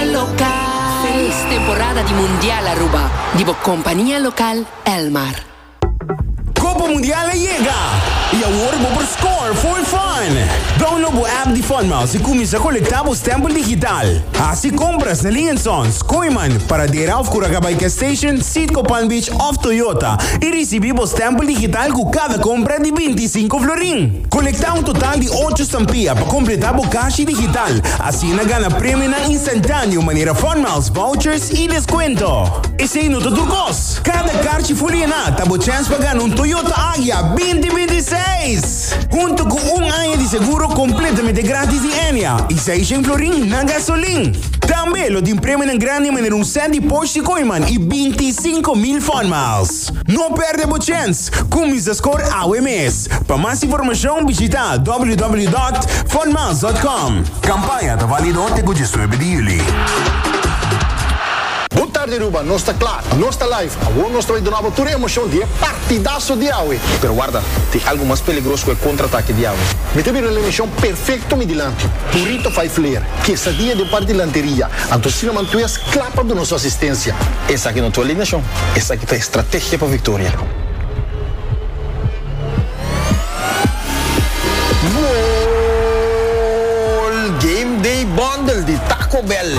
El local. Feliz temporada di Mundial Aruba di bo compania local Elmar. Copa Mundial a yega y awor bo por score for fun! Download bo app di Funmouse y cuminsa colecta bo stempel digital. Haci compras na Ling and Sons, Koeiman, Paradera of Curacabai Gas Station, Citgo Palm Beach of Toyota y ricibi bo stempel digital cu cada compra di binti y cinco florin. Konektá un total di ocho stampia pa kompletá bo kashi digital, asina gana premionan instantáneo manera funmiles, vouchers i deskuento. Esei no ta tur kos! Kada karchi ful yená ta bo chèns pa gana un Toyota Agya binti binti i seis, huntu ku un aña di seguro kompletamente grátis di Enea i seis shen florin na gasolin. Tambe lo tin premionan grandi manera un sèt di Porsche Koyman i binti i sinku mil funmiles. No perde bo chens! Cuminsa scor awe mes! Pa mas informacion bishita www.funmas.com. Campaña ta valido te cu diesnuebe di juli. Bo tarde Aruba, nos ta kla, nos ta live. Awor nos ta bai duna bo tur e emocion di e partidaso di awe. Pero warda, tin algo mas peligros cu e contraatake di awe. Mi ta bira el emocion perfecto mi dilanti. Purito vijf leer, quesadilla den par di lanteria. Anto asina mantues. Kla pa duna su asistensia. Esaki no ta alineashon, esaki ta estrategia pa viktoria. Goal! Game Day Bundle di Taco Bell.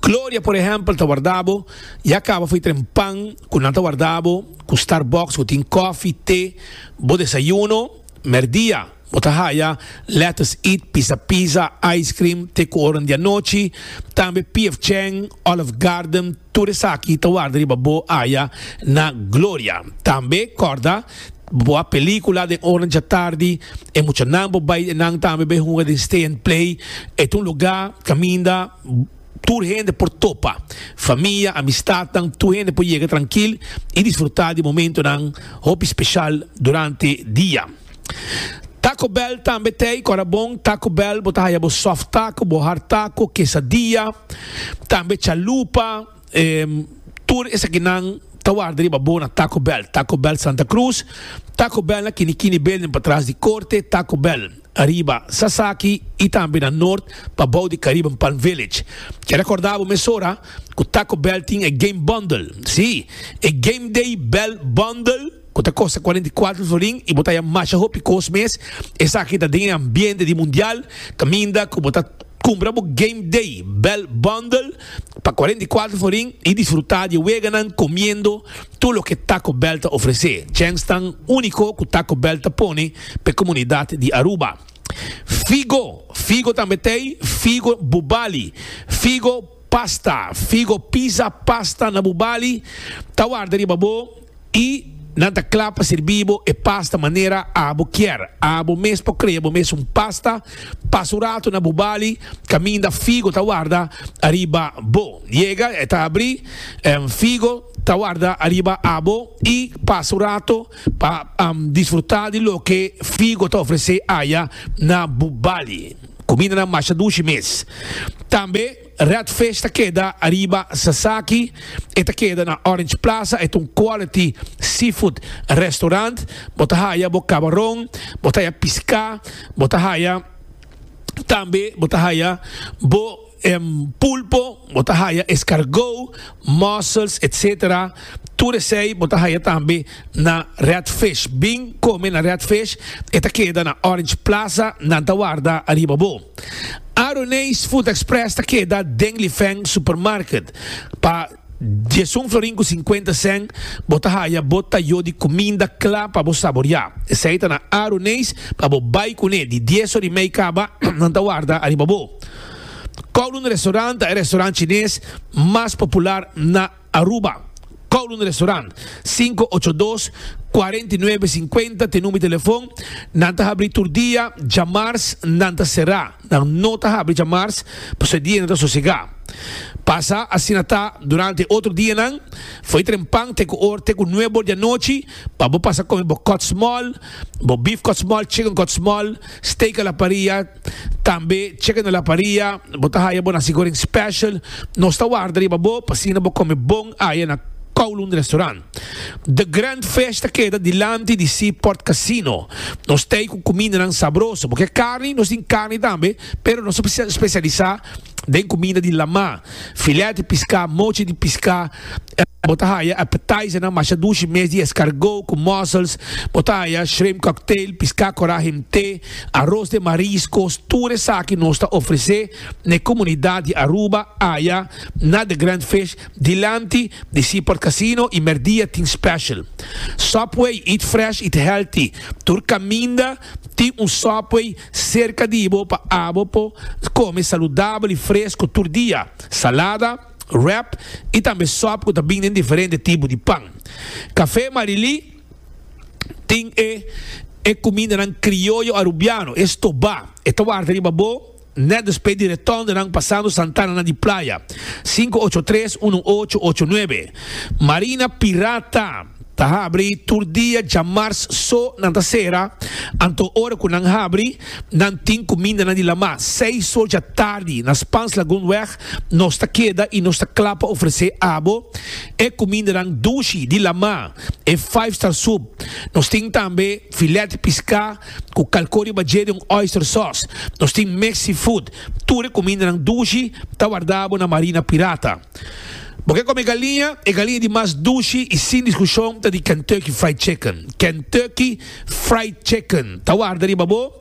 Gloria, por ehempel, ta warda bo, ya caba fui tren pan cu nan ta warda bo cu Starbucks cu tin cofi, te, bo desayuno. Merdia, bo ta haya lettuce eat, pisa pizza, ice cream, te cu oro n'dianochi. Tambe PF Chang, Olive Garden, tur esaki ta warda riba bo aya na Gloria. Tambe, corda, bo a pelicula den ora n'djatardi, e muchanan bo bay den nan tambe bay hunga den Stay and Play. E ta un lugar caminda. Tur hende por topa, famia, amistadnan, tur hende por yega trankil i disfrutá di momentonan hopi speshal durante dia. Taco Bell tambe t'ei kòrda bon. Taco Bell bo ta haya bo soft taco, bo hard taco, quesadilla, tambe chalupa. Tur esakinan ta warda riba bo na Taco Bell. Taco Bell Santa Cruz, Taco Bell na Kinikini Building patras di korte, Taco Bell. Ariba Sasaki y tambe na Noord pa bou di Caribbean Palm Village. Ke recorda bo mesora cu Taco Bell tin e game bundle. Sí, e Game Day Bell Bundle cu ta costa cuarenta y cuatro florin y bo ta haya masha hopi cos mes. Esaki ta den e ambiente di Mundial caminda cu bo ta cumpra bo Game Day Bell Bundle. pa cuarenta y cuatro forin y disfruta di e weganan comiendo tur loke Taco Bell ta ofrece, djens tan unico cu Taco Bell ta pone pa e comunidad di Aruba. Figo, figo tambe t'ey, figo bubali, figo pasta, figo pizza pasta na bubali ta warda riba bo. I nan ta kla pa sirbi bo e pasta manera abo kier. Abo mes por krea bo mes un pasta. Pasa un ratu na bo bali kaminda figo ta warda ariba bo. Yega e ta abri, em, figo ta warda ariba abo i pasa un ratu pa, em, disfruta di loke figo ta ofrese aya na bo bali. Kumindanan masha dushi mes tambe. Red Fish ta keda ariba Sasaki, e ta keda na Orange Plaza, e ta un quality seafood restaurant, bo ta haya bo cabaron, bo ta haya pisca, bo ta haya tambe bo ta haya bo em pulpo, bo ta haya escargot, mussels etc. Tur esey bo ta haya tambe. na Redfish. Bin kome na Redfish, e ta keda na Orange Plaza, nan ta warda ariba bo. Aroneis Food Express ta keda den Lifeng Supermarket. Pa diesun florin ku sinkuenta sèn bo ta haya bo tayó di kuminda kla pa bo saboriá. Esei ta na Aroneis pa bo bai kuné. Di dies or i mei kaba, nan ta warda ariba bo. Kowloon Restaurant ta e restaurant chines mas popular na. Aruba, Kowloon Restaurant, sinku ocho dos, kuarenta i nuebe, sinkuenta t'e number telefon, nan ta habri tur dia, djamars nan ta sera, nan no ta habri djamars, pasobra e dia nan ta sosega. Pasa asina ta durante e otro dianan, fo'i trempan te ku or te ku nuebe or di anochi, pa bo pasa kome bo kòtsmòl, bo beef kòtsmòl, chicken kòtsmòl, steak a la parrilla, Tambe cheque na la paria, bo ta haya bo nasi goreng special, nos ta warda riba bo pa asina bo come bon aya na Kowloon Restaurant. The Grand Fish ta keda dilanti di Seaport Casino. Nos t'ey cu cumindanan sabroso. Bo kier carni, nos tin carni tambe, pero nos ta specialisa. den comida di lama, filet di pisca, mochi di pisca, bo ta haya appetizernan masha dushi mes di escargot cu mussels, bo ta haya shrimp cocktail, pisca cora himte, aros den mariscos, tur esaki nos ta ofrece n'e comunidad di Aruba aya na The Grand Fish dilanti di Seaport Casino y merdia tin special. Subway, eat fresh, eat healthy, tur caminda, Tin un Subway serka di bo pa abo por kome saludabel i fresco tur dia, salada, wrap i tambe sòp ku ta bin den diferente tipo di pan. Café Marilí tin e e kumindanan krioyo arubiano, e stobá, e ta warta riba bo. Net despues di retorn di nan pasando Santana na di playa, sinku ocho tres unu ocho ocho nuebe, Marina Pirata ta habri tur dia djamars so nan ta sera, anto ora ku nan habri nan tin kuminda nan di lama, seis sor dja tardi na Spans Lagoon weg nos ta keda i nos ta kla pa ofresé abo e kumindanan dushi di lama, e five star soup, nos tin tambe filèt di piská, cu calco riba dje di un oyster sauce. Nos tin Mexi Food. Tur e cumindanan dushi ta wardabo na Marina Pirata. Bo ke come galiña? E galiña di mas dushi y sin discusion ta di Kentucky Fried Chicken. Kentucky Fried Chicken ta warda riba bo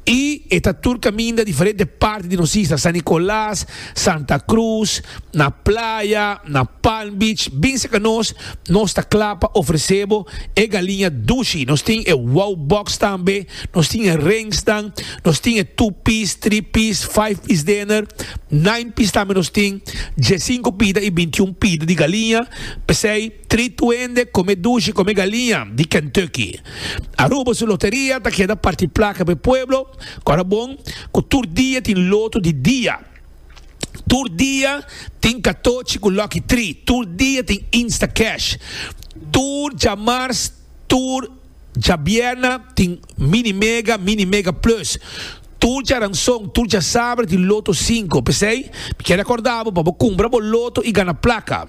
y e ta tur caminda diferente parti di nos isla, San Nicolas, Santa Cruz, na Playa, na Palm Beach, bin serka nos, nos ta kla pa ofresé bo e galiña dushi. Nos tin e Wow Box tambe, nos tin e Ringsnan, nos tin e Two Piece, Three Piece, Five Piece Dinner, Nine Piece tambe nos tin, diesinco pida i bintiun pida di galiña, p'esei, Tri tuende come dushi come galiña di Kentucky. Aruba su loteria ta keda parti placa p'e pueblo, ora bon cu tur dia tin loto di dia. Tur dia tin catochi cu lucky tri, tur dia tin Instacash, tur djamars, tur. Djabierna tin Mini Mega, Mini Mega Plus. Tur djaranson, tur djasaber di Loto Cinco. P'esei, mi kier recorda bo pa bo cumpra bo loto y gana placa.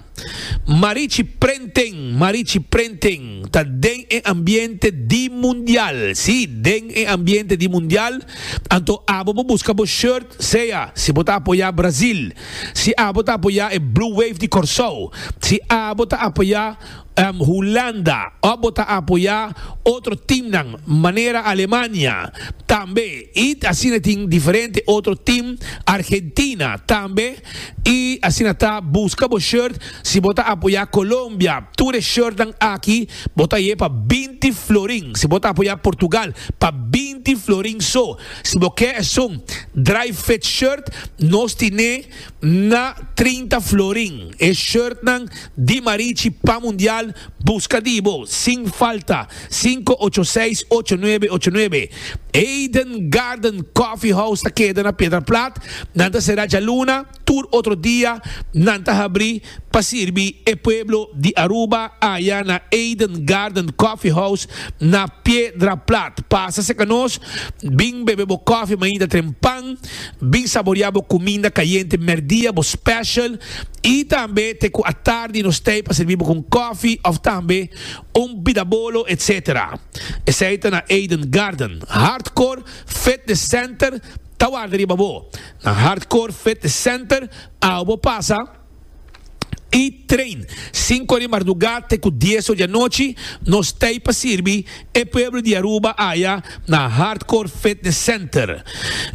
Marichi Printing, Marichi Printing ta den e ambiente di Mundial, si, den e ambiente di Mundial. Anto abo bo busca bo shirt, sea si bo ta apoya Brazil, si abo ta apoya e Blue Wave di Corsou, si abo ta apoya. Hulanda, ò bo ta apoyá otro timnan manera Alemania, tambe i asina tin diferente otro tim, Argentina tambe i asina ta buska bo shirt si bo ta apoyá Colombia tur e shirtnan aki bo ta ye pa binti florin si bo ta apoyá Portugal pa binti florin so si bo ke esun dry fit shirt nos tine Na trinta florin e shirtnan di Marichi pa Mundial buska di bo sin falta sinku ocho seis ocho nuebe ocho nuebe Eden Garden Coffee House ta keda na Piedra Plat nan ta sera djaluna tur otro dia nan ta habri pa sirbi e pueblo di Aruba aya na Eden Garden Coffee House na Piedra Plat. Pasa cerca nos, bin bebe bo koffie mainta trempan, bin saboria bo cuminda cayente merdia, bo special, y tambe te cu atardi nos tey pa sirbi bo cu un koffie of tambe un bidabolo etc. Esey ta na Eden Garden. Hardcore Fitness Center ta warda riba bo. Na Hardcore Fitness Center. Awe bo pasa i train. Sinku di marduga te ku dies or di anochi nos ta ei pa sirbi e pueblo di Aruba aya na Hardcore Fitness Center.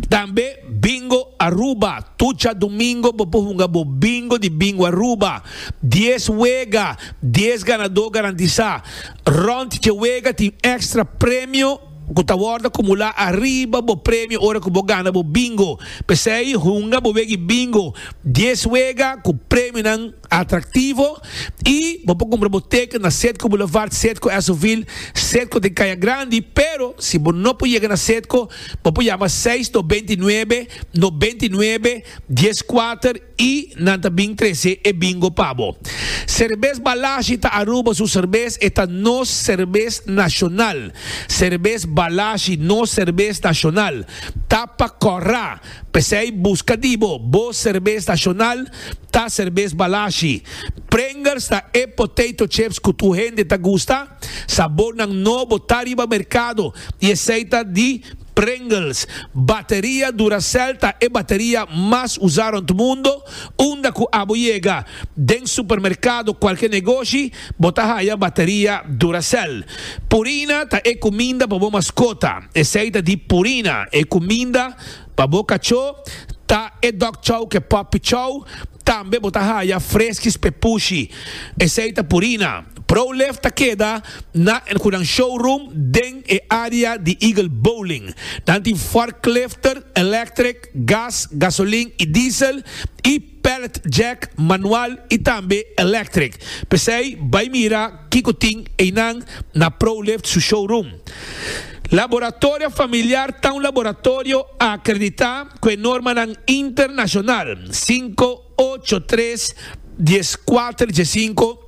Tambe Bingo Aruba, tucha domingo bo por hunga bo bingo di Bingo Aruba. Dies wega, dies ganadó garantisá. Rònt dje wega tin èkstra premio. ku ta wòrdu akumulá ariba bo premio ora ku bo gana bo bingo. P'esei hunga bo wega e bingo dies wega ku premionan atraktivo i bo por kumpra bo teken na Sedco Boulevard, Sedco Esovil, Sedco den Kaya Grandi, pero si bo no por yega na Sedco bo por yama seis no beinti nuebe no beinti nuebe dies kuater. I nan ta bin trece e bingo pa bo. Cervez Balashi ta Aruba su cervez, e ta nos cervez nacional. Cervez Balashi, nos cervez nacional, ta pa Corra. Pesey busca di bo, bo cervez nacional ta Cervez Balashi. Pringles ta e potato chips cu tur hende ta gusta. Sabornan nobo ta riba mercado y esey ta di Pringles, Bateria Duracell ta e bateria mas usá rònt mundo, unda ku abo yega den supermerkado kualke negoshi bo ta haya bateria Duracell. Purina ta e kuminda pa bo maskota, esei ta di Purina, e kuminda pa bo kachó ta e Dog Chow ke Puppy Chow, tambe bo ta haya Fresky's Pepushi, esei ta Purina. Prowlef ta keda na el cu nan showroom den e area di Eagle Bowling. Nan tin forklifter, electric, gas, gasolin y diesel, y pallet jack, manual y tambe electric. P'esey bay mira kico tin eynan na Prowlef su showroom. Laboratorio Familiar ta un laboratorio acredita cu e normanan internacional, cinco, ocho, tres, dies, cuater, diecinco.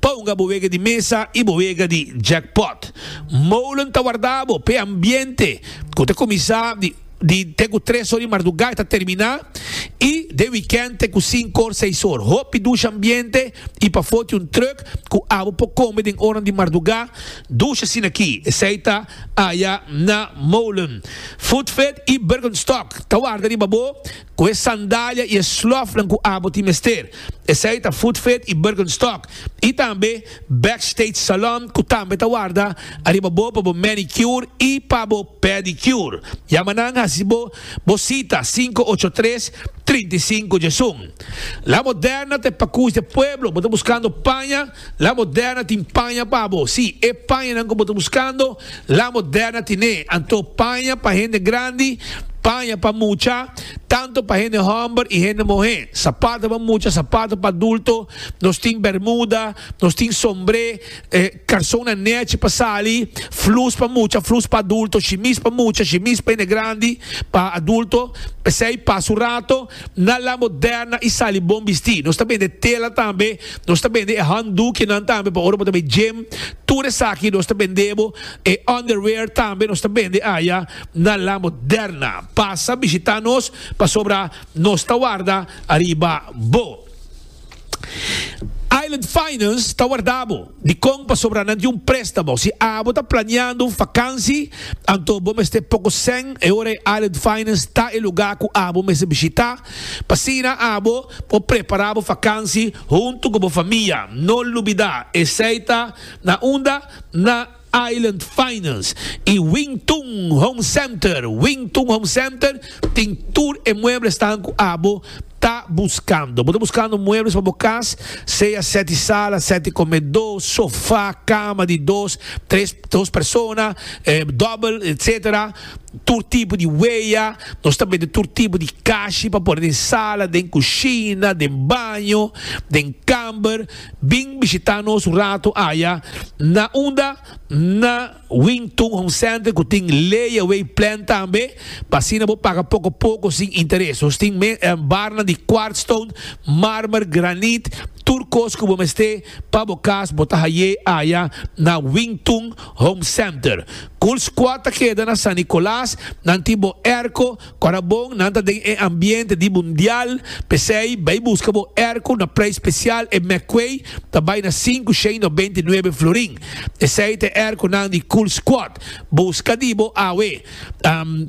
Pa hunga bo wega di mesa y bo wega di jackpot. Molen ta warda bo p'e ambiente cu ta cuminsa di di te cu tres or di marduga y ta termina y den weekend te cu cinco or, seis or. Hopi dusha ambiente y pa foti un truck cu abo por come den oranan di marduga, dusha asin'aki. Esey ta aya na Molen. Foodfed y Bergenstock ta warda riba bo. Cu e sandalia y e slofnan cu abo tin mester, esey ta Footfit y Birkenstock, y tambe Backstage Salon cu tambe ta warda ariba bo pa bo manicure y pa bo pedicure. Yama nan haci bo bo cita cinco ocho tres, trinta y cinco djesun. La Moderna ta e pacush de pueblo, bo ta buscando paña? La Moderna tin paña pa bo. Sí, e pañanan ku bo ta buskando, La Moderna tin'é. Anto paña pa hende grandi, paña pa mucha, tantu pa hende hòmber i hende muhé, sapato pa mucha, sapato pa adulto, nos tin bèrmuda, nos tin sombré, karsonnan nèchi pa sali, flus pa mucha, flus pa adulto, shimis pa mucha, shimis pa hende grandi, pa adulto, p'esei pasa un rato. Na La Moderna i sali bon bistí. Nos ta bende tela tambe. Nos ta bende e handdoekjenan tambe pa ora bo ta bai gym. Tur esaki nos ta bende bo. E underwear tambe nos ta bende aya na La Moderna. Pasa bishitá nos pasobra nos ta warda ariba bo. Island Finance ta warda bo. Dikon pasobra nan tin un préstamo? Si abo ta planeando un fakansi, anto bo mester poko sèn. E ora ei Island Finance ta e lugá ku abo mester bishitá. P'asina abo por prepará bo fakansi huntu ku bo famia. No lubidá, esei ta na unda na. Island Finance y Wing Tun Home Center, Wing Tun Home Center tin tur e muebles tan cu abo ta buscando. Bo ta buscando muebles pa bo cas, sea sete sala, sete comedo, sofa, cama di dos, tres, dos persona, double, etc. Tur tipo di wea, nos ta bende tur tipo di cashi pa pone den sala, den cushina, den baño, den camber. Bin bishitá nos un ratu aya na unda na Wing Tun Home Center ku tin layaway plan tambe pa asina bo paga poko poko sin interes. Nos tin barnan di quartz stone, marmer, granit, tur kos ku bo mester pa bo kas bo ta hay'é aya na Wing Tun Home Center. Cool Squad ta keda na San Nicolas, nan tin bo airco, Ora bon nan ta den e ambiente di mundial, p'esei bai buska bo erko na prei spesial e McQuay ta bai na sinku shei nobenta i nuebe florin. Esei ta e erkonan di Cool Squad. Buska di bo awe.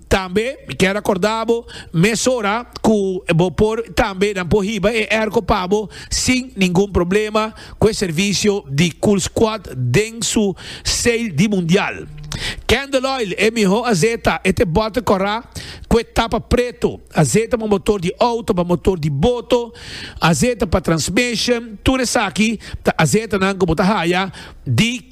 Tambe mi kier akorda bo mesora ku bo por tambe nan por hiba e erko pa bo sin ningun problema. cu e servicio di Cool Squad den su sale di Mundial. Candle Oil, e miho azeta, e te bote cora cu e tapa preto. Azeta pa motor di auto, pa motor di boto, azeta pa transmission, tur esaki ta azetanan cu bo ta haya di.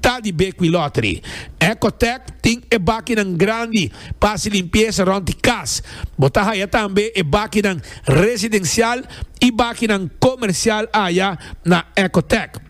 Ta di Bequi Lottery. Ecotec tin e bakinan grandi pa hasi limpiesa rond di kas. Bo ta haya tambe e bakinan residencial y bakinan comercial aya na Ecotec.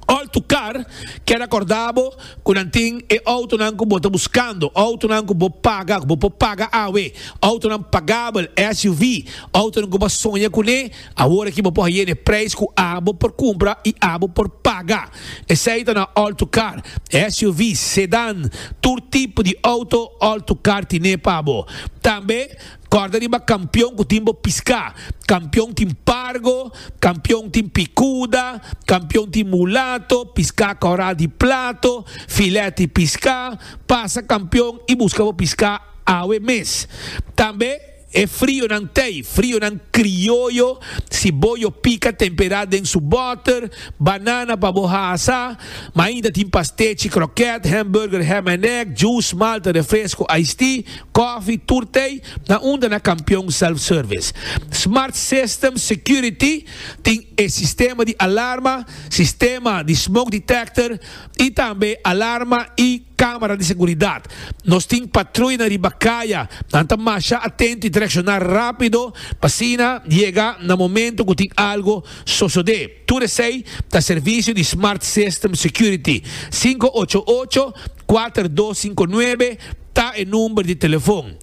All to car keda corda bo cu nan tin e autonan cu bo ta buscando, autonan cu bo paga, cu bo por paga awe, autonan pagabel, SUV, autonan cu bo a soña cune. Awor aki bo por haye n'e prijs cu abo por cumpra y abo por paga. Esey ta na all-to-car, SUV's, sedan, tur tipo di auto all-to-car tine pa bo. Tambe corda riba Campeon cu tin bo pisca. Campeon tin Pargo, Campeon tin Picuda, Campeon tin Mulato, pisca coral di plato, filet di pisca. Pasa Campeon y busca bo pisca awe mes. Tambe. E frionan tei, frionan krioyo, si bo yo pika tempera den su boter, banana pa bo hasa, ma ainda tin pastechi, kroket, hamburger, ham and egg, juice, malta, refresco, iced tea, kofi, tur tei, na unda na Kampion Self Service. Smart System Security tin e sistema di alarma, sistema di smoke detector, Y tambe alarma y camera di seguridad. Nos tin patruya na riba caya. Nan ta masha atento y ta reacciona rapido pa asina yega na momento cu tin algo sosode. Tur esey ta servicio di Smart System Security, sinku ocho ocho, kuater dos sinku nuebe, Ta e number di telefon.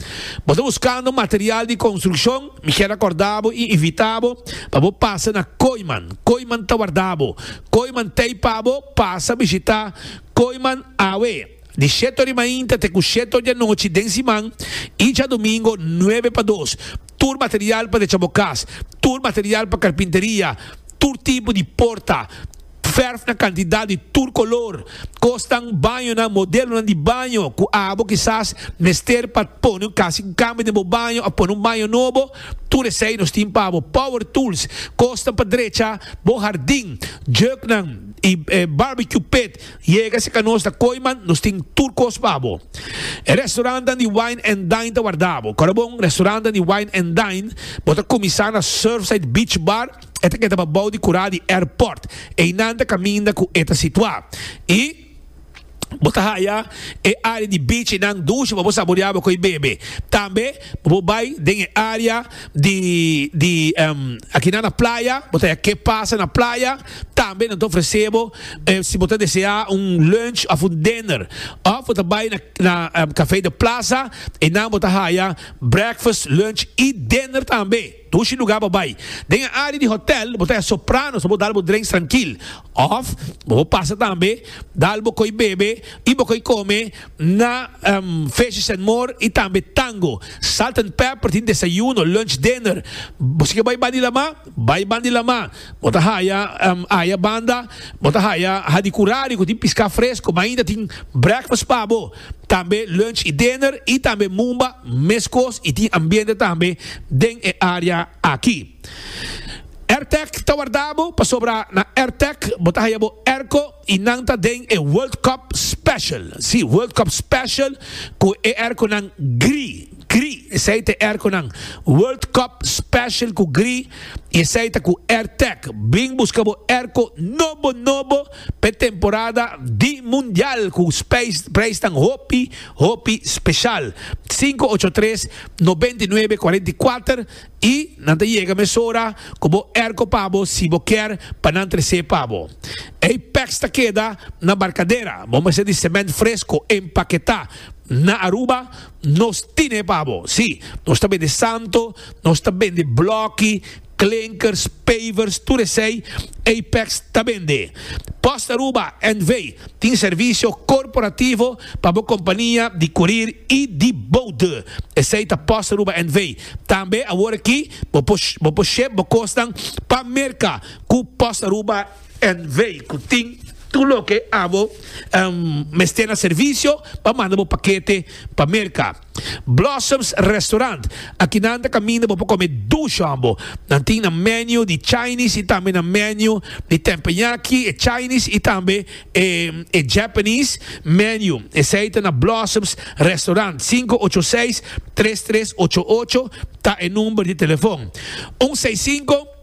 Bo ta buskando material di konstrukshon? Mi kier akorda bo i invita bo pa bo pasa na Koiman. Koiman ta warda bo. Koiman t'ei pa bo pasa bishita Koiman awe di shete ora di mainta te ku shete ora di anochi den siman i djadumingo nuebe pa dos. Tur material pa decha bo kas, tur material pa karpinteria, tur tipo di porta, Verf na kantidat di tur kolor. Kosnan, bañonan, modelonan di baño ku abo kisas mester pa pone un kasi un kambio den bo baño òf pone un baño nobo, tur esei nos tin pa bo. Power tools, kosnan pa drecha bo hardin, juknan i barbecue pit. Yega si ka nos ta koi man nos tin tur kos pa bo. E restorantnan di wine and dine ta wardabo. Kòrda bon, restorantnan di wine and dine bo ta kuminsá na Surfside Beach Bar E ta keda pa bou di kura di airport. Einan ta kaminda ku e ta situá. I bo ta haya e área di bichi nan dushi pa bo saboreá bo koi bebe. Tambe bo por bai den e área di di akinan na playa, bo ta haya ke pasa na playa. Tambe nan ta ofresé bo si bo ta deseá un lunch òf un dinner. Òf bo ta bai na na Café de Plaza einan bo ta haya breakfast, lunch i dinner tambe. Dushi lugar bo bai. Den e área di hotèl bo ta e Sopranos pa bo dal bo drenks trankil. Òf bo por pasa tambe dal bo koi bebe i bo koi kome na Fishes and More i tambe Tango. Salt and Pepper tin desayuno, lunch, dinner. Bo si ke bai Bandi Lamá, bai Bandi Lamá. Bo ta haya aya banda bo ta haya hadi kurari ku tin piská fresko. Mainta tin breakfast pa bo. tambe lunch y dinner y tambe mumba mescos y tin ambiente tambe den e area aki. Airtech ta wardabo pasobra na Airtech bo ta haya bo airco y nan ta den e World Cup Special, si World Cup Special cu e airconan gri, gri esey ta e airconan World Cup Special cu gri y esey ta cu Airtech. Bin busca bo airco nobo nobo. P'e temporada di Mundial ku preisnan hopi hopi speshal. Sinku ocho tres nobenta i nuebe kuarenta i kuater i nan ta yega mesora ku bo erko pa bo si bo kier pa nan tres'é pa bo. Ei pèks ta keda na barkadera, bo mester di sement fresko empaketá. Na Aruba nos tin'é pa bo. Sí, nos ta bende santo, nos ta bende blòki. Klinkers, pavers, tur esei Apex ta bende. Post Aruba NV. tin servisio korporativo pa bo kompania di kurir i di boude. Esei ta Post Aruba NV. Tambe awor aki bo por bo por ship bo kosnan pa Merka ku Post Aruba NV. Ku tin tur loke abo mester na servisio pa manda bo pakete pa Merka. Blossoms Restaurant, Aki nan ta kaminda bo pa kome dush hombo. Nan tin nan menu di Chinese y tambe nan menu di Tempenyaki, e Chinese y tambe e e Japanese menu. Esey ta na Blossoms Restaurant. Sinku ocho seis tres tres ocho ocho ta e number di telefon. Un seis sinku.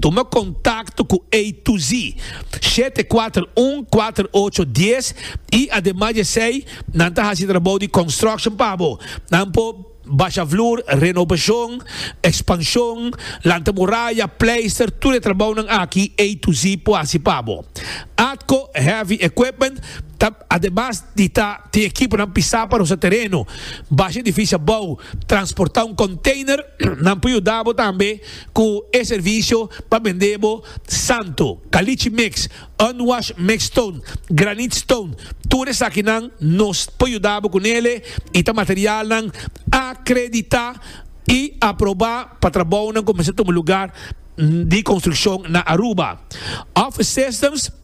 Tuma kontakto ku A to Z shete kuater un kuater ocho dies i ademas di esei nan ta hasi trabou di construction pa bo. Nan por basha vloer, renobashon, ekspanshon, lanta muraya, pleister, tur e trabounan aki A to Z por hasi pa bo. Atco Heavy Equipment ta ademas di ta tin ekiponan pisá pa rusa tereno, basha edifisio abou, transportá un konteiner, nan por yuda bo tambe Cu e servicio pa bende bo santo, caliche mix, unwashed mixed stone, granite stone, tur esakinan nos por yuda bo cu nele y ta materialnan acredita y aproba pa trabounan cu mester tuma lugar di construccion na Aruba. Office Systems.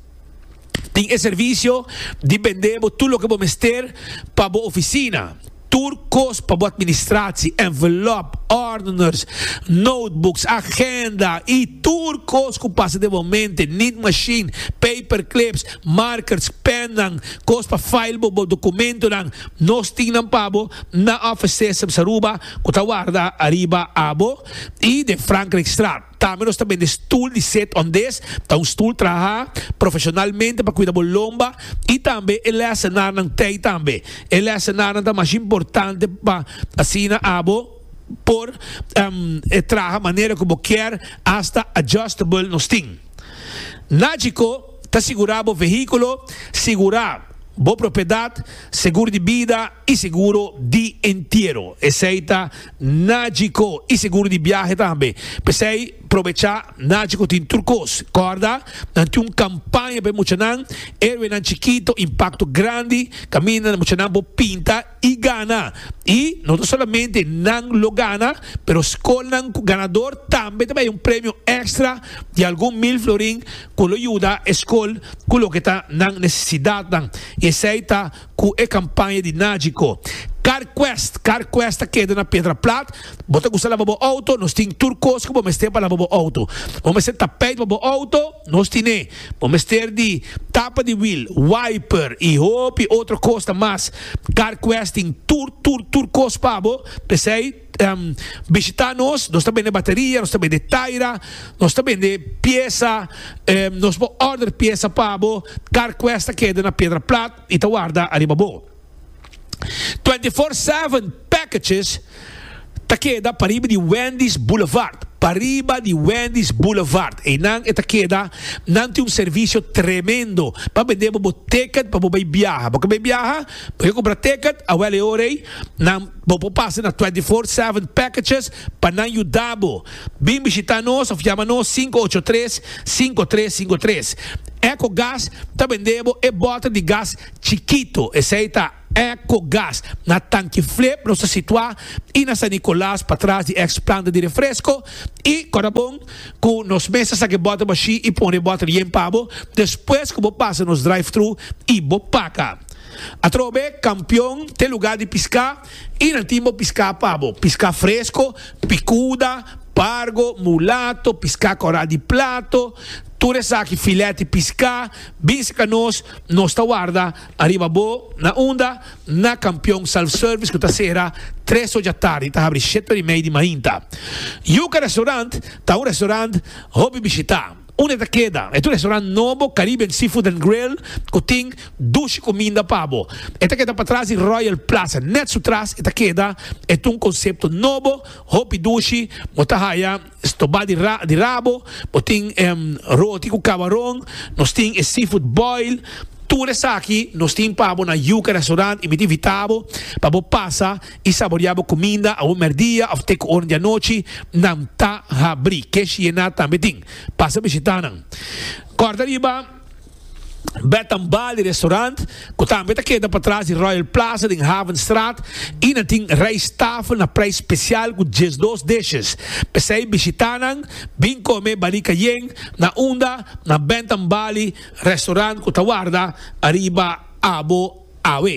Tin e servicio di bende bo tur loke bo mester pa bo oficina. Tur cos pa bo administratie, envelop, ordeners, notebooks, agenda y tur cos cu pasa den bo mente, need machine, paperclips, markers, pennan, cos pa file bo bo documentonan, nos tin nan pa bo na Office Systems Aruba cu ta warda ariba abo y den Frankrijkstraat. Tambe nos ta bende stul di set on des ta un stul traha profesionalmente pa kuida bo lomba i tambe e lèsenarnan tei tambe. E lèsenarnan ta mas importante pa asina abo por traha manera ku bo kier asta adjustable nos tin. Nagico ta sigurá bo vehíkulo, sigurá bo propiedat, segur di bida i seguro di entiero. Esei ta Najico y seguro di biahe tambe. P'esey probecha, Najico tin tur cos. Corda, nan tin un campaña pa e muchanan, Héroenan Chikito, Impacto Grandi, caminda muchanan por pinta y gana. Y no ta solamente nan lo gana, pero scolnan cu ganador tambe ta bay un premio extra di algun mil florin cu lo yuda e scol cu loke ta nan necesidadnan. Y esey ta. cu e campaña di Nagico. Car Quest, Car Quest ta keda na Pedra Plat. Bo ta gusta laba bo auto? Nos tin tur cos cu bo mester pa laba bo auto. Bo mester tapijt pa bo auto? Nos tin e. Bo mester di tapa di wiel, wiper y hopi otro cosnan mas. Car Quest tin tur, tur, tur cos pa bo. P'esey. bishita nos, nos ta bende bateria, nos ta bende taira, nos ta bende piesa, nos por order piesa pa bo, car quest ta keda na piedra plat y ta warda ariba bo. Twenty four seven packages ta keda pariba di Wendy's Boulevard, pariba di Wendy's Boulevard eynan e ta keda, nan tin un servicio tremendo pa bende bo bo ticket pa bo bay biaha, bo quier bay biaha bo quier compra ticket awel e ora ey nan. Bo por pasa na Twenty Four Seven Packages pa nan yuda bo. Bin bishita nos of yama nos sinku ocho tres, sinku tres sinku tres. Echo Gas ta bende bo e bota di gas chikito, esei ta Echo Gas. Na Tanki Flip nos ta situa i na San Nicolas patras di ex planta di refresco i kora bon ku nos mes ta saka e bota bashi i pone e bota yen pa bo despues ku bo pasa nos drive-thru i bo paka. Atrobe kampion te lugá di piská i nan tin bo piská pa bo. Piská fresko, pikuda, pargo, mulato, piská kòrá di plato, tur esaki filèt di piská bin serka nos, nos ta warda ariba bo. Na unda? Na kampion Self Service ku ta sera tres ocha tardi i ta habri shete ora i mei di mainta. Yuka Restaurant ta un restaurant hopi bishitá. Un e ta keda. E ta un restaurant nobo, Caribbean Seafood and Grill, ku tin dushi kuminda pa bo. E ta keda patras di Royal Plaza. Nèt su tras e ta keda. E ta un konsepto nobo, hopi dushi. Bo ta haya stobá di di rabo. Bo tin roti ku kabaron. Nos tin e seafood boil. Tur esaki nos tin pa bo na Yuca Restaurant i mi ta invitá bo pa bo pasa. i saboreá bo kuminda awor mèrdia òf te ku oren di anochi, nan ta habrí. Kesh Yená tambe tin. Pasa bishitá nan. Kòrda riba Bed and Bali Restaurant, ku tambe ta keda patras di Royal Plaza den Havenstraat i nan tin rijsttafel na preis spesial ku diesdos dishes. P'esei bishitá nan, bin kome Bali Cayenne na unda na Bed and Bali Restaurant ku ta warda ariba abo awe.